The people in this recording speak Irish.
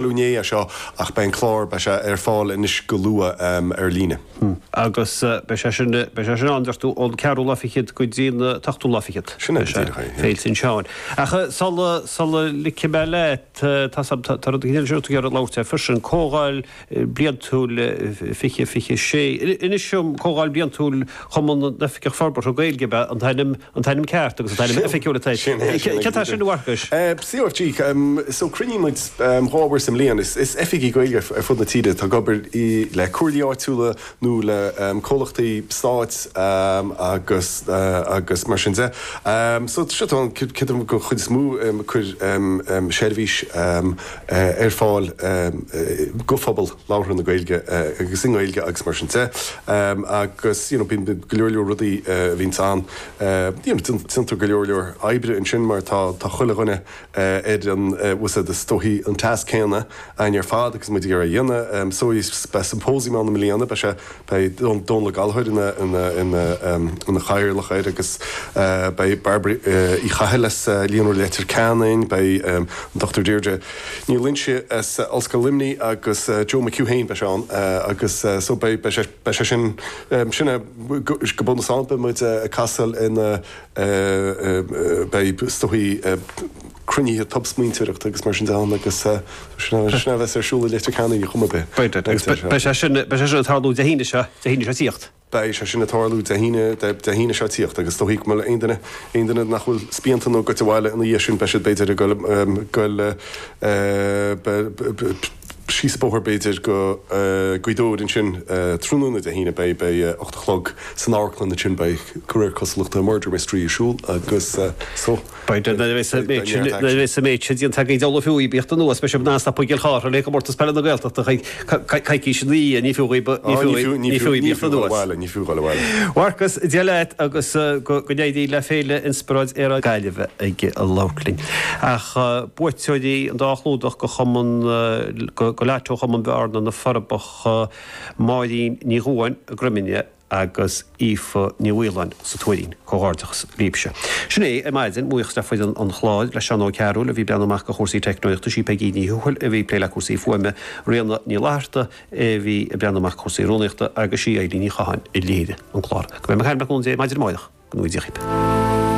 Luaine é seo ach beidh an clár, beidh sé ar fáil anois go luath ar líne. Agus beidh sé sin, beidh sé sin ann, deir tú, ón ceathrú lá fichead go dtí an t-ochtú lá fichead. Sin é, go díreach é, yeah. Féil tSin Seáin. Ach sul a, sul a ligfidh mé leat, tá a fhios agam, tá, tá rud éigin eile sin a raibh tú ag iarraidh labhairt air freisin, comhdháil bliantúil fiche, fiche sé, inis dom, comhdháil bliantúil, Cumann na nOifigeach Forbartha Gaeilge ab ea an t-ainm, an t-ainm ceart agus an t-ainm oifigiúil atá air. Sin é, sin é. Céard é sin a Mharcais? CRG, So cruinníonn muid dhá uair sa mbliain, is oifigigh Gaeilge ar fud na tíre atá ag obair le comhairlí áitiúla nó le comhlachtaí stáit agus agus mar sin de. So seo tá an, creidim go chuid is mó cur seirbhís ar fáil go phobal. labhartha na Gaeilge agus i nGaeilge agus mar sin de agus you know bíonn go leor leor rudaí a bhíonns ann you know déantar go leor leor oibre ansin mar tá tá chuile dhuine ar an bhfuil a fhios agat is dóichí an tasc céanna againn ar fad agus muid ag iarraidh a dhéanamh so is beidh siompóisiam ann i mbliana beidh sé Beidh Dónall Ó Gallchóir ina chathaoirleach air agus beidh Bairbre Uí Chathail as Líonra Leitir Ceanainn, beidh an Dr Deirdre Ní Loingsigh as Ollscoil Luimnigh agus Joe McHugh féin, beidh sé ann agus so beidh sé, beidh sé sin, sin é go bunúsach ann, beidh muid ag casadh lena, beidh is dóichí, cruinnithe tobsmaointeoireachta agus mar sin de ann agus sin a bheas ar siúl i Leitir Ceanainn ar chuma ar bith. Beidh, agus beidh sé sin ag tarlú Dé hAoine seo, Dé hAoine seo tíocht. Beidh sé sin ag tarlú Dé hAoine, Dé hAoine seo tíocht agus is dóichí go mbeidh aon duine, aon duine nach bhfuil spíonta nó ag goil abhaile ina dhiaidh sin, beidh siad b'fhéidir ag dul, dul, beidh, síos an bóthar b'fhéidir go Gaoth Dobhair ansin tráthnóna Dé hAoine, beidh, beidh ocht a chlog san amharclann ansin beidh, de réir cosúlachta, Murder Mystery ar siúl agus so. Beidh nuair a bheas an méid sin, nuair a bheas an méid sin déanta agaibh ar ndóigh ní fiú dhaoibh a thíocht anuas, beidh sibh in ann stopadh i gCill Chartha le Comórtas Peile na Gaeltachta coicís ina dhiaidh, ní fiú dhaoibh, ní fiú dhaoibh, ní fiú dhaoibh a thíocht anuas. Ní fiú dhul abhaile. A Mharcais, Dia leat agus go n-éirí le Féile Inspioráid Aeráide na Gaillimhe ag labhairt linn. Ach buaiteoirí an dá chlúdach go chumann, go lotto Chumann Bhearna, Na Forbacha, Máirín Ní Dhubháin, Droim Ine, agus Aoife Ní Mhaoláin sa Tuairín. Comhghairdeachas libhse. Sin é, ar maidin, buíochas le foireann an chláir, le Seán Ó Cearúil, a bhí ag breathnú amach ar chúrsaí teicneolaíochta, is í Peigí Ní Thuathail a bhí ag plé le cúrsaí fuaime, Ríona Ní Fhlatharta a bhí ag breathnú amach ar chúrsaí rúnaíochta, agus is í Eibhlín Ní Chatháin a léirigh an clár. Go mbeidh mé ag caint libh le cúnamh Dé maidin amárach, go ngnóthaí Dia dhaoibh.